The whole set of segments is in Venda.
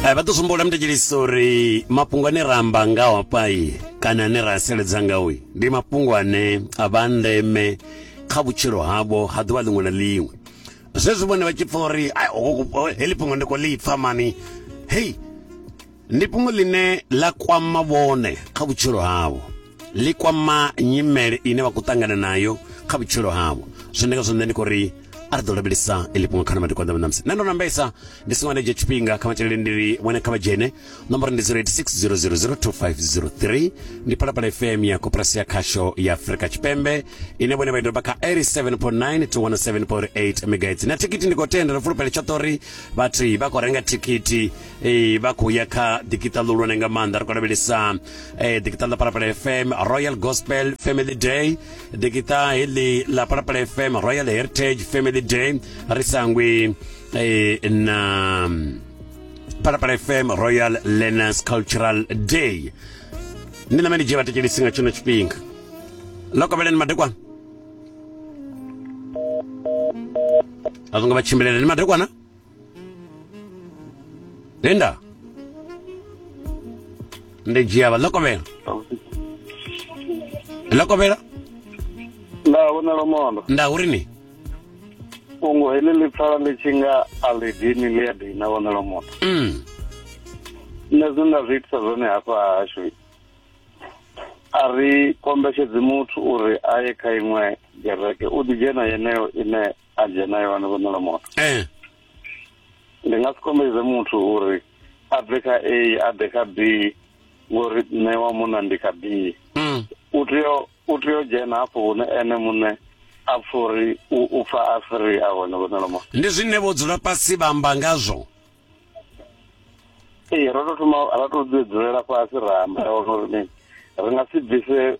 Eh, vha ḓo sumbula muthetshelisi uri mafhungo ane ra amba ngaho hafhai kana ane ra seledza ngaoi ndi mafhungo ane a vha ndeme kha vhutshilo havho ha ḓuvha ḽiṅwe na ḽiṅwe zwezwi vhone vha tshi pfa uri heḽi fhungo ndi khou ḽi pfa mani hei ndi fhungo ḽine ḽa kwama vhone kha vhutshilo havho ḽi kwama nyimele ine vha khou ṱangana nayo kha vhutshilo havho zwine nga zwone ndi khou ri a ri ḓo lavhelesa iḽi fhungo kha na madekwana na musi nṋe ndo nambesa ndi songo nda dzhia tshifhinga kha matshilele ndi ri vhone kha vha dzhene nomboro ndi 0860002503 ndi phalaphala fm ya koporasi ya khasho ya afurika tshipembe ine vhone vha i doba kha 87.9 to 107.8 megaits na thikhithi ndi khou tenda ndo fulufhela tshoṱhe uri vhathu vha khou renga thikhithi Ee, vha khou ya kha digital ḽihulwane nga maanḓa ri khou lavhelesa eh, digital ḽa parapala fm royal gospel family day digital heḽi ḽa parapala fm royal heritage family day ri sangwi eh, na parapala fm royal learners cultural day ndi name ndi dzhie vhatekelisi nga tshino tshifhinga ḽo kovheleni madekwana a zwo ngo vha tshimbilele ni madekwana Linda. Ndi dzhia vha ḽokovhela. Ḽokovhela? Nda vhona lomondo. Nda uri ni? Fhungo heḽi ḽi pfala ḽi tshi nga a ḽi dini ḽi a dina vhona lomondo. Mm. Nṋe zwine nda zwi itisa zwone hafha hashu a ri kombetshedzi muthu uri a ye kha iṅwe gereke u ḓi dzhena yeneyo ine a dzhena yo vhana vhonela moto eh ndi nga si kombedze muthu uri a bve kha a a ḓe kha b ngori nṋe wa munna ndi kha b mm. u tea u tea u dzhena hafho hune ene muṋe a pfa uri u pfa a free a hone vhonela moto ndi zwine vho dzula fhasi vha amba ngazwo ee ro to thoma ra to dzulela fhasi ra amba uri mini ri nga si bvise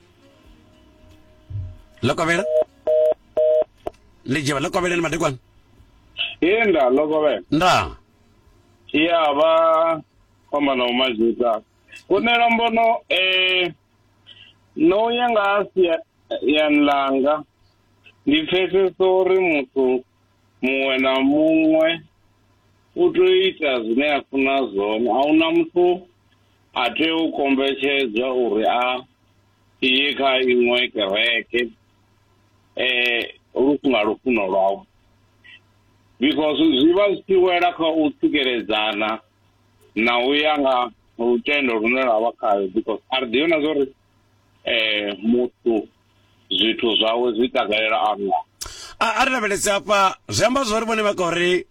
Lokovhela ḽidzhevha lokovheleni madekwana ee nda lokovhela nda ya vha fhambana u mazhita kunela mbono eh no ya nga sia yani langa ndi pfesesa uri muthu muṅwe na muṅwe u tea u ita zwine a funa zwone a huna muthu a tea u kombetshedzwa uri a ye kha iṅwe kereke um lu si nga lufuno lwawe because zwi vha zwi tshi wela kha u tsikeledzana na u ya nga lutendo lune lwa vha khayo because a ri ḓivhi na zwa uri um muthu zwithu zwawe zwi takalela Allah a a ri lavhelese afha zwi amba zwori vhone vha khou ri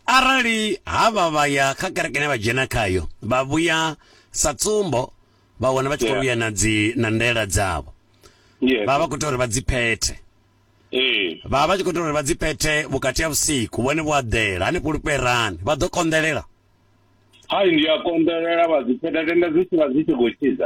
arali havha vha ya kha kereke ine vha dzhena khayo vha vhuya sa tsumbo vha wana vha tshi khou vhuya na dzi na ndaela dzavho vha vha khou tea uri vha dzi phethe ee vha vha tshi khou tea uri vha dzi phethe vhukati ha vhusiku vhone vho aḓela hanefho lufherani vha ḓo konḓelela hai ndi a konḓelela vha dzi phetha tenda dzi tshi vha dzi tshi khou tshiza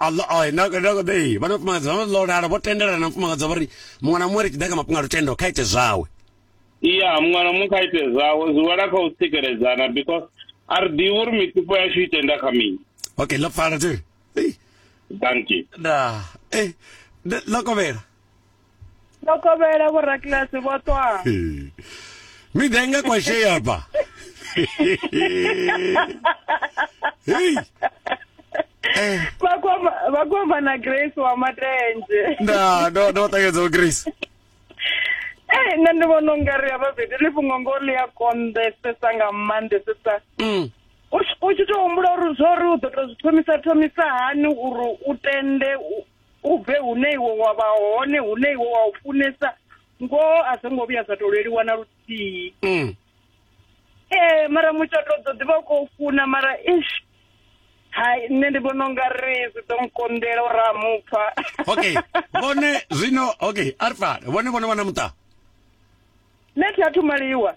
na vhafumakadzi vha ḽolala vho tendelana na mufumakadzi vha ri muṅwe na muṅwe ri tshi ḓa kha mafhungo a lutendo kha ite zwawe ya muṅwe na muṅwe kha ite zwawe zwi wela kha u tsikeledzana because a ri ḓivhi uri mitupo yashu i tenda kha mini okay ḽo pfala tse thank you da eh ḽo kovhela ndo kovhela vhorakiḽasi vho ṱwa miḓa i nga kwashea ba hei eh. vha kwamba na grace wa matenje nda ndo ndo ṱangedza grace ee nṋe ndi vhona ungari havha vhidi ḽi fhungo ngo ḽi a konḓesesa nga maanḓesesa mm. u tshi tou humbula uri zwo ri u ḓo tou zwi thomisa thomisa hani uri u tende U bve hune iwe wa vha hone, hune iwe wa u funesa, ngoho a zwo ngo vhuya zwa tou leluwa na luthihi. Mm. Ee, mara mutshato u ḓo ḓi vha u khou funa mara ish. Hai, nṋe ndi vhona unga ri zwi ḓo nkonḓela uri a mupfa. Okay, vhone zwino okay, Arifat, vhone vhone vha na muṱa? Nṋe thi athu maliwa.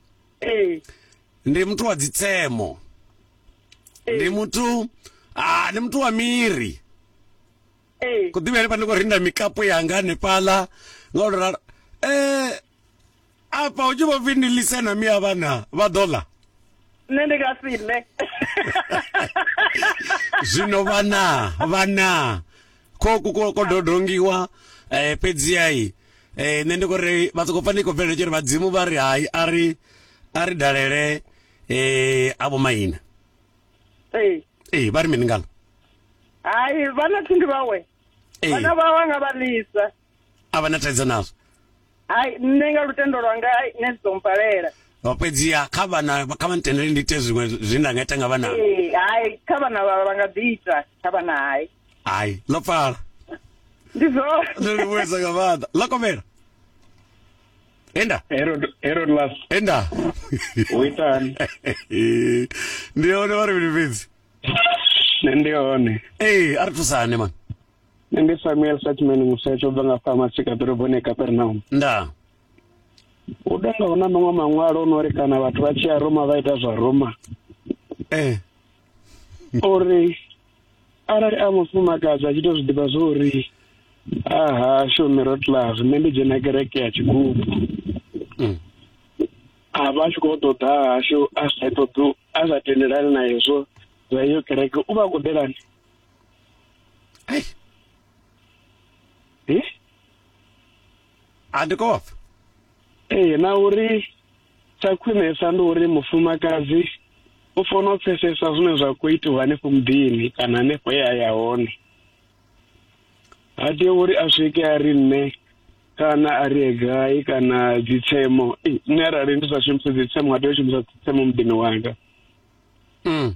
ee ndi muthu wa dzitsemo ndi muthu ah ndi muthu wa miri ee ku ḓivha henefha ndi khou rinda mikapu yanga hanefhaḽa nga u ralo eh afha hu tshi vho pfi ndi lise na miya vhana vha ḓo ḽa nṋe ndi nga si ḽe zwino vhana vhana ko ko ko dodongiwa eh fhedzi ai eh nṋe ndi kore vha soko pfa ndi khou bvelela tshori vhadzimu vha ri hai a ri a ri dalele eh avho maina ee ee vha ri mini ngalo hai vhana thundu vhawe ee vhana vhawe nga vha lisa A vha na thaidzo nazwo. Hai, nṋe nga lutendo lwanga hai nṋe zwi ḓo mpalela. Vha fhedziha kha vhana kha vha ntendele ndi ite zwiṅwe zwine nda nga ita nga vhana. Ee, hai kha vhana vha nga ḓi ita kha vhana hai. Hai, ḽo pfala. Ndi zwone. Ndo livhuwesa nga maanḓa. Ḽo kovhela. Enda. Herod Herod Love. Enda. U itani? Ndi hone vha ri vhili fhedzi. Nṋe ndi hone. Ee, a ri thusane man. nṋe ndi samuel satman musetsho bva nga fama sika ḓoroboni capernaum ndaa hu ḓo nga hu na maṅwe maṅwalo o no ri kana vhathu vha tshi ya roma vha ita zwa roma ee eh. uri arali a mufumakadzi a tshi to zwi ḓivha zwo uri a hashu middle class nṋe ndi dzhena kereke ya tshigubu mm. a vha a tshi khou ṱoḓa hashu a sa ṱoḓi a sa tendelani na hezwo zwa iyo kereke u vha a khou ḓelani Hey. Hi? A ndi kofa. Ee na uri tsha khwinesa ndi uri mufumakadzi u fanela u pfesesa zwine zwa khou itiwa hanefho muḓini kana hanefho ye a ya hone ha tea uri a swike a ri nṋe kana a ri gai kana dzitsemo ei nṋe arali ndi sa shumise dzitsemo a tea u shumisa dzitsemo muḓini wanga mm.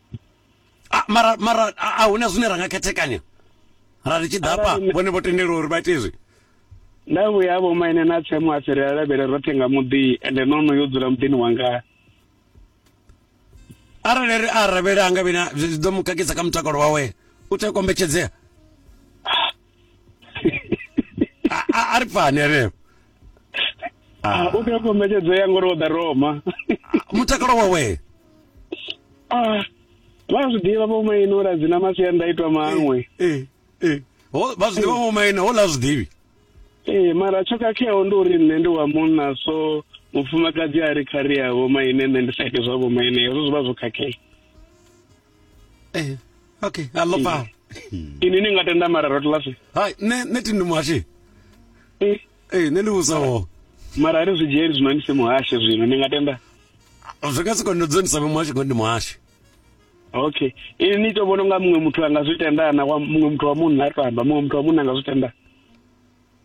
Ah, mara mara a- a huna zwine ra nga khethekanya ra ri tshi ḓa hafha Arali- vhone vho tendelwa uri vha ite izwi nda vhuya vho maine na tsemu a fhirela lavhele roṱhe nga muḓi ende no no yo dzula muḓini wanga arali ri a ravhela anga vhina zwi zwi ḓo mu khakhisa kha mutakalo wawe u tea u kombetshedzea a a- a ri pfani ane Ah, u tea kombetshedzea ngori o ḓa roma mutakalo wawe Ah, vha zwi ḓivha vho maine uri a dzi na masiandaitwa maṅwe Eh, eh. Ho- vha zwiḓivha vhomaine hola zwiḓivhi ee mara tsho khakheaho ndi uri nṋe ndi wa munna so mufumakadzi a ri kharia vho maine nṋe ndi sa ite zwa vho maine hezwo zwi vha zwo khakhea eh okay a lo pala ini ni nga tenda mara rotla se hai ne ne tindu mwashi eh eh ne ndi usa wo mara ari zwi dzheri zwino ni se muhashe zwino ni nga tenda zwi nga si kondo dzoni sa muhashe kondi muhashe okay ini ni to vhona nga muṅwe muthu anga zwi tenda na muṅwe muthu wa munna to amba muṅwe muthu wa munna nga zwi tenda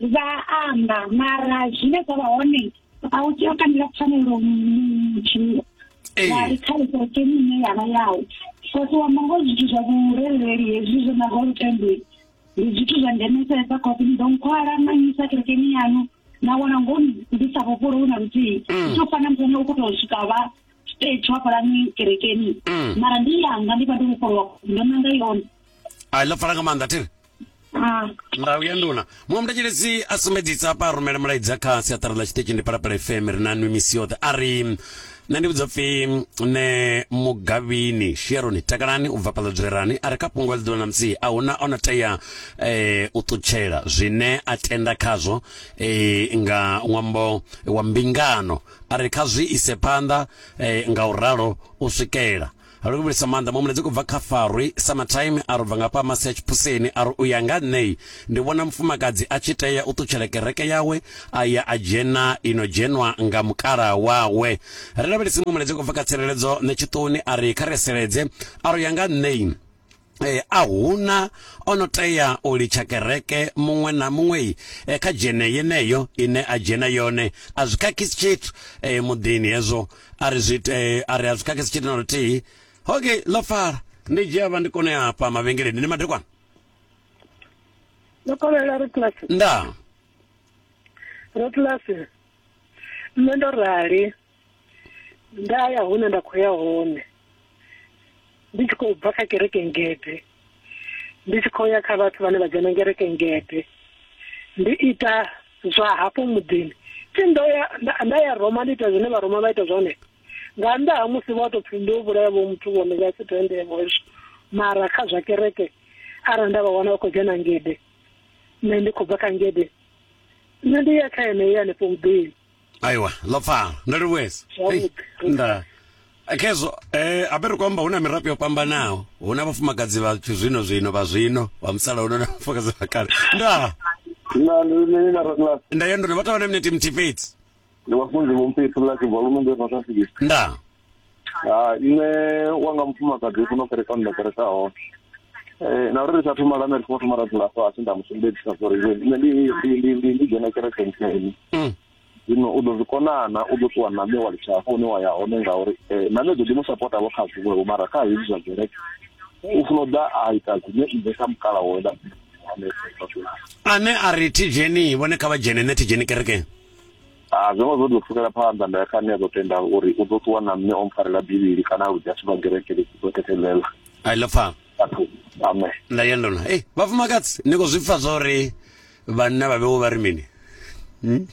vha amba mara zwine zwa vha hone a u tea u kandela pfanelo mutshilo wari kha ikoke ine ya vha yau kosi wa mongo zwithu zwa vhurereli hezwi zwo na ho lutendeli ndi zwithu zwa ndemesesa kosi ni ḓo nkhwala na nyisa kerekeni yanu na wana ngo ndi sa vhofholo hu na luthihi mm. zwo fana muthu ane u khou tou swika vha stage hafhalani kerekeni mm. mara ndi yanga ndi vha ndo vhofholowa ndo nanga yone a ḽa pfala nga maanḓa thiri ndau ya nduna muṅwe muthetshelesi a sumbedzisa hafha a rumele mulaedza kha siaṱari ḽa tshiṱitshi ndi palapala fm ri na nwi misi yoṱhe a ri nṋe ndi vhudza pfhi nṋe mugavhini sheroni takalani u bva fhaḽa dzwerani a ri kha fhungo ḽi ḓuvha na musi a huna o no tea eh, u ṱutshela zwine a tenda khazwo eh, nga ṅwambo wa mbingano a ri kha zwi ise phanḓa eh, nga u ralo u swikela A luvhulisa maanḓa muṅwe muledzi kubva kha Farwi Summertime a ri ubva nga hafha masi a tshipuseni a ri uya nga nṋei ndi vhona mufumakadzi a tshi tea u ṱutshela kereke yawe a ya a dzhena ino dzhenwa nga mukala wawe. Ri lavhelesi muṅwe muledzi kubva kha Tsireledzo Ṋetshiṱoni a ri kha ri seledze a ri uya nga nṋei E, a huna o no tea u litsha kereke muṅwe na muṅwe e, kha dzhene yeneyo ine a dzhena yone a zwi khakhisi tshithu e, muḓini hezwo a ri zwi e, a ri a zwi khakhisi tshithu na luthihi okay ḽo fara ndi dzhia vha ndi kone hafha mavhengeleni ndi madekwana ndo kovhela ro kilasi nda ro kilasi nṋe ndo rali nda ya hune nda khou ya hone ndi tshi khou bva kha kereke ngede ndi tshi khou ya kha vhathu vhane vha dzhena kereke ngede ndi ita zwa hafho muḓini thi ndo ya nda ya roma ndi ita zwine vharoma vha ita zwone nga nnḓa ha musi vha tou pfhi ndo vhulaya vho muthu vhone vha si tendevo hezwo mara kha zwa kereke arali nda vha wana vha khou dzhena ngede nṋe ndi khou bva kha ngede nṋe ndi ya kha yeneyo hanefho muḓini Aiwa, ḽo pfala. Ndo livhuesa. Hei, nda khezwo eh habe ri khou amba hu na mirape yo fhambanaho hu na vhafumakadzi vha zwino zwino vha zwino vha musalauno na vhafumakadzi vha kale nda na ndi ni na raglas nda ya ndo vha tovha na minete mthi fhedzi ndi vhafunzi vho mphethu la ke volume ndo no tafika nda hai nṋe wanga mufumakadzi funa u kereka nda kereka hone eh na uri ri sa thoma lana ri thoma ra dzula fhasi nda musumbedzisa uri iwe nṋe ndi ndi ndi ndi ndi dzhena kereke ntseni zwino u ḓo zwi konana u ḓo ṱuwa na nṋe wa litsha hafho hune wa ya hone ngauri na nṋe ḓo ḓi mu sapota vho kha zwiṅwe vho mara kha hezwi zwa kereke u funa u ḓa a ita zwine nṋe sa mukala wo nda ane a ri thi dzheni vhone kha vha dzhene nṋe thi dzheni kerekeni A zwo ngo zwo tou pfukela phanḓa nda ya kha ane a ḓo tenda uri u ḓo ṱuwa na nṋe o mpfarela bivhili kana a ludzia sivha gereke ḽi ḓo thethelela i love her athu ame nda ya ndona ei vhafumakadzi ni khou zwi pfa zwa uri vhanna vha vhewo vha ri mini Hmm?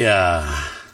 ya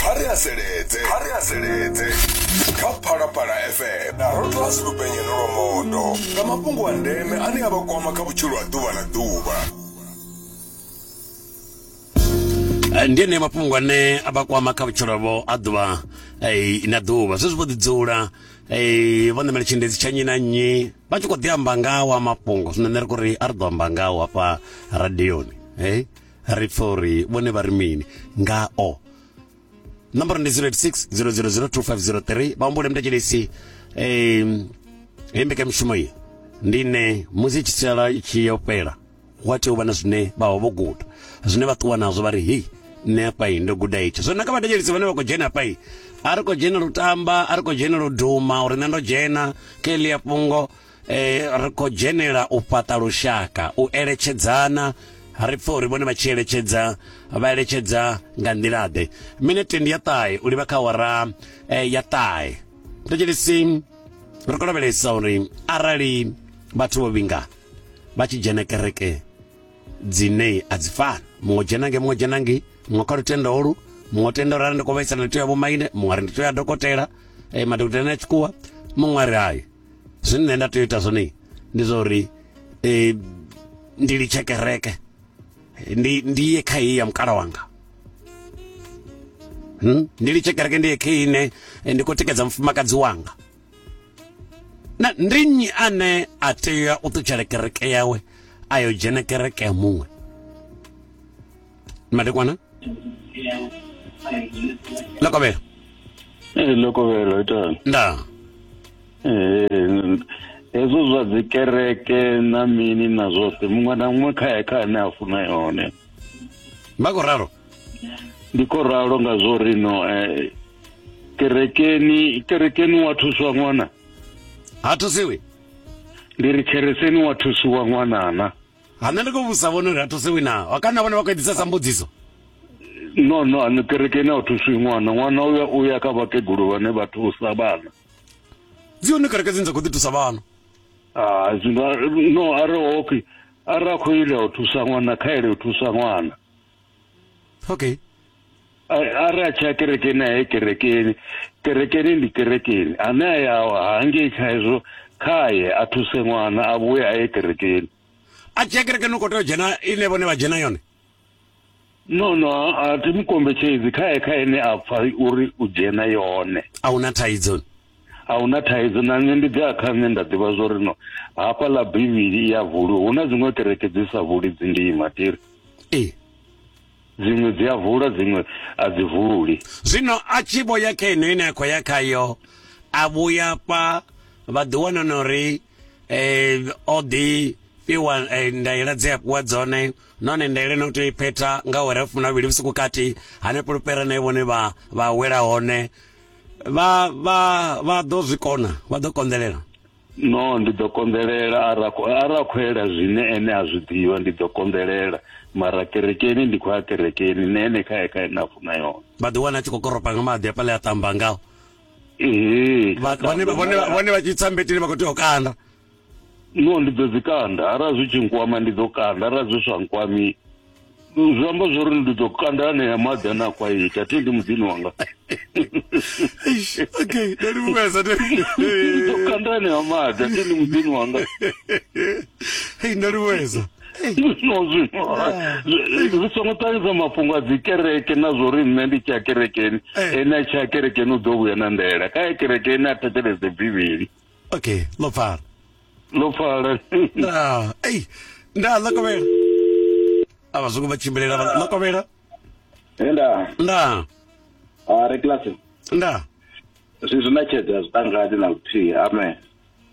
kha ri haseledze kha ri haseledze kha phalaphala fm na rotllas lupenyelo lwa mondo nga mafhungo a ndeme ane a vha kwama kha vhutshilo ha ḓuvha na ḓuvha Eh, ndi ene mafhungo ane a vha kwama kha vhutshilo vho a ḓuvha eh, na ḓuvha zwezwi vho ḓidzula eh, vho ṋamela tshiendedzi tsha nnyi na nnyi vha tshi khou ḓi amba ngawa mafhungo zwino nṋe ri khou ri a ri ḓo amba ngawo hafha radioni hey ri pfa uri vhone vha ri mini ngao nomboro ndi 086 0002503 vha humbule mtatshelesi um hei mbekamishumo iyi ndi ne musi tshi sala tshi yo fhela wa tea u vha na zwine vha vha vho guda zwine vha ṱuwa nazwo vha ri hei nṋe afhai ndo guda itsho zwo naka vhathetshelisi vhane vha khou dzhena afhai a ri khou dzhena lutamba a ri khou dzhena luduma uri nṋe ndo dzhena kha elia fhungo Ri khou dzhenela u fhaṱa lushaka, u eletshedzana. Ri pfa uri vhone vha tshi eletshedza, vha eletshedza nga nḓila-ḓe? Minete ndi ya ṱahe u livha kha awara ya ṱahe. Thetshelesi, ri khou lavhelesa uri arali vhathu vho vhinga vha tshi dzhena kereke dzine a dzi fani muṅwe o dzhena nge muṅwe dzhena nge muṅwe kha lutendo holu muṅwe tenda uri arali ndi khou vhaisala ndi tea ya vhomaine muṅwe ari ndi tea ya dokotela eh, madokotela na tshikuwa muṅwe ari hayi zwine nṋe nda tea u ita zwone ndi zwa uri um ndi litshe kereke ndi ndi ye kha heyi ya mukala wanga hmm? ndi litshe kereke ndi ye kha ine eh, ndi khou tikedza mufumakadzi wanga na ndi nnyi ane a tea u ṱutshela kereke yawe a yo dzhena kereke ya muṅwe madekwana lokovhela ee lokovhelo itani nda ee hezwo zwa dzi kereke na mini na zwoṱhe muṅwe na muṅwe kha kha ane a funa yone vha khou ralo ndi khou ralo nga zwo ri no eh, kerekeni kerekeni wa thuswa ṅwana ha thusiwi ndi ri khereseni wa thusiwa ṅwanana ha nṋe ndi khou vhusa vhone uri a thusiwi na ha kana vhone vha khou edzisesa mbudziso no no ani kerekeni a thusiwi ṅwana ṅwana uya uya kha vhakegulu vhane vha thusa vhana dzi hone kereke dzine dza khou ḓi thusa vhana ah zwino no are okay ara khou ila u thusa ṅwana kha ele u thusa ṅwana okay a ri a tsha kerekeni aye kerekeni kerekeni ndi kerekeni ane a ya hangei kha hezwo khaye a thuse ṅwana a vhuye a ye kerekeni a tshi ya kerekeni u khou tea u dzhena ine vhone vha dzhena yone no no a thi mu kombetshedzi khaye kha ene a pfa uri u dzhena yone a huna thaidzo a hu na thaidzo na nṋe ndi ḓi a kha nṋe nda ḓivha zwo ri no hafha ḽa bivhili i ya vuli hu na dziṅwe kereke dzi sa vuli dzi ndima tiri ee dziṅwe dzi a vula dziṅwe a dzi vuli zwino a tshi vho ya kha ino ine a khou ya khayo a vhuya fha vha ḓi wana na uri um o ḓi fhiwa eh, ndaela dze a fhiwa dzone nahone ndaela no tea iphetha nga ore fumi na vhili vhusiku kati hanefho lupera na vhone vha vha wela hone vha vha vha ḓo zwi kona vha ḓo konḓelela no ndi ḓo konḓelela ara ara khoela zwine ene a zwi ḓivha ndi ḓo konḓelela mara kerekeni ndi khou ya kerekeni ne ene kha ye kha ene a funa yone vha ḓi wana tshi khou koropa nga maḓi afhaḽa ya ṱamba ngao vhone vha tshi tsambetini vha khou tea u kanda no ndi ḓo dzi kanda arali zwi tshi nkwama ndi ḓo kanda arali zwi sa nkwami zwi amba zwo ri ndi ḓo kanda anea maḓi ane a khou a ita thi ndi muḓini wanga okay ndo livhuwesa ndo kanda anea maḓi a thi ndi muḓini wanga hei ndo livhuwesa no zwino ah. ri songo ṱahisa mafhungo a dzi kereke na zwo ri nṋe ndi tshi ya kerekeni eh. ene a tshi ya kerekeni u ḓo vhuya na ndela kha ya kerekeni a thetshelese bivhili Okay, lo far. Lo far. Ah, ei. Nda lo komela. Ava zungu vha tshimbilela vha lo komela. Nda. Nda. Ah, re class. Nda. Zwi zwi na tshedza zwi tangani na luthihi. Amen.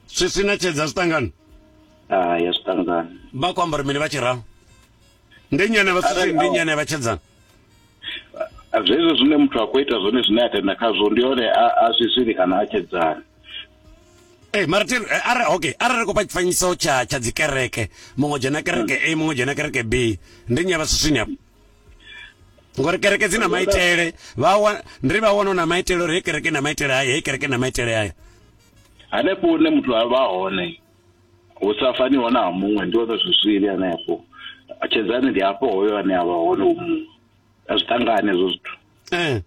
Zwi sina tshedza zwi tangani. Ah, ya zwi tangani. Vha ku ambara mini vha tshi ralo? ndi nnyi ane vha sisi ndi nnyi ane vha tshedzana zwezwo zwine muthu a khou ita zwone zwine a tenda khazwo ndi hone a zwi zwili kana a tshedzana ee eh, mara te eh, ara okay arali kopa tshifanyiso tsha tsha dzikereke muṅwe dzhena kereke a muṅwe dzhena kereke b ndi nnyi a vha siswini afho ngori kereke dzi na maitele vha ndi vha wana na maitele uri hei kereke na maitele haya hei kereke na maitele haya hanefho hune muthu a vha hone hu sa faniho na ha muṅwe ndi hone zwizwili hanefho tshedzani ndi hafho hoyo ane a vha hone u muṅwe a zwi ṱangane hezwo zwithu ee eh.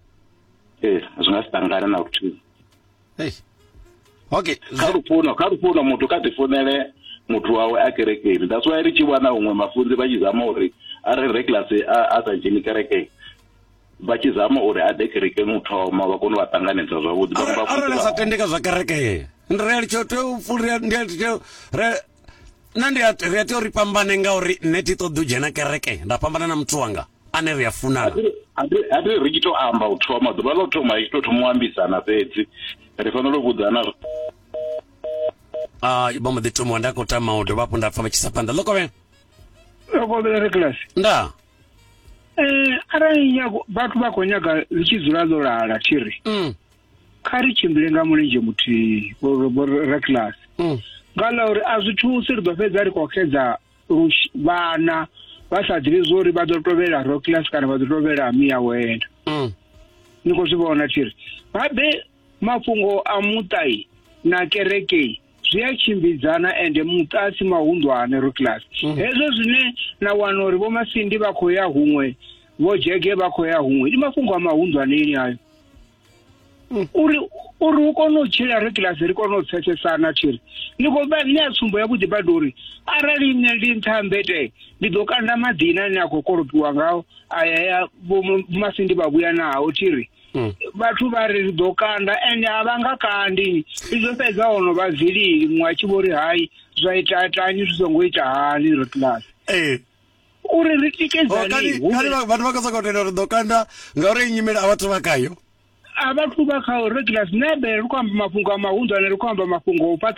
ee eh, zwi nga si ṱangane na luthihi okay kha lufuno kha lufuno muthu kha ḓifunele muthu wawe a kerekeni that's why ri tshi wana huṅwe mafunzi vha tshi zama uri a re regular a sa dzheni kerekeni vha tshi zama uri a ḓe kerekeni u thoma vha kone u vha ṱanganedza zwavhuḓi arali sa tende kha zwa kereke ndi ri litsho tea u pfulia ndi litsho re na ndi ri a tea uri fhambane ngauri nṋe thi ṱoḓi u dzhena kereke nda fhambana na muthu wanga ane ri a funana a ri ri tshi tou amba u thoma ḓuvha ḽa u thoma i tshi tou thoma u ambisana fhedzi ri fanela u vhudzana a vha mbo ḓi thomiwa nda khou tama u dovha hafhu nda pfha vha tshi sa phanḓa ḽo kovhela ḽo kovhela ri kilasi ndaa Eh, arali nyago vhathu vha khou nyaga ḽi tshi dzula ḽo lala thiri Mm, kha ri tshimbile nga mulenzhe muthihi vho- vho- vho reclas mm. nga ḽa uri a zwi thusi ri ḓo fhedza ri khou xedza lush- vhana vha sa ḓivhi zwo uri vha ḓo tovhela roclas kana vha ḓo tovhela miya wena Mm. ni khou zwi vhona thiri babe Mafhungo a muṱa na kereke zwi a tshimbidzana ende muṱa a si mahunḓwane Ruklas. Mm. Hezwo zwine na wana uri vho Masindi vha khou ya huṅwe, vho Jege vha khou ya huṅwe, ndi mafhungo a mahunḓwaneni ayo. Mm. Uri uri u kone u tshila Ruklas ri kone u pfesesana thiri. Ni khou vha ni a tsumbo ya vhuḓi badi uri arali nṋe ndi nṱha mbete ndi ḓo kanda maḓina ni a khou kolopiwa ngao aya ya vho Masindi vha vhuya naho thiri. Mm. vhathu vha ri ri ḓo kanda ende a vha nga kandi ndi zwo fhedza hono vha vilili muṅwe a tshi vho ri hayi zwa ita itani zwi songo ita hani ri class ee uri ri Oh, tikedzane kani hu kani vhe- vha- vhathu vha khou sokou tenda uri ḓo kanda ngauri iyi nyimele a vhathu vha khayo a vhathu vha kha uri class nebe ri khou amba mafhungo a mahunḓwane ri khou amba mafhungo o fhaṱa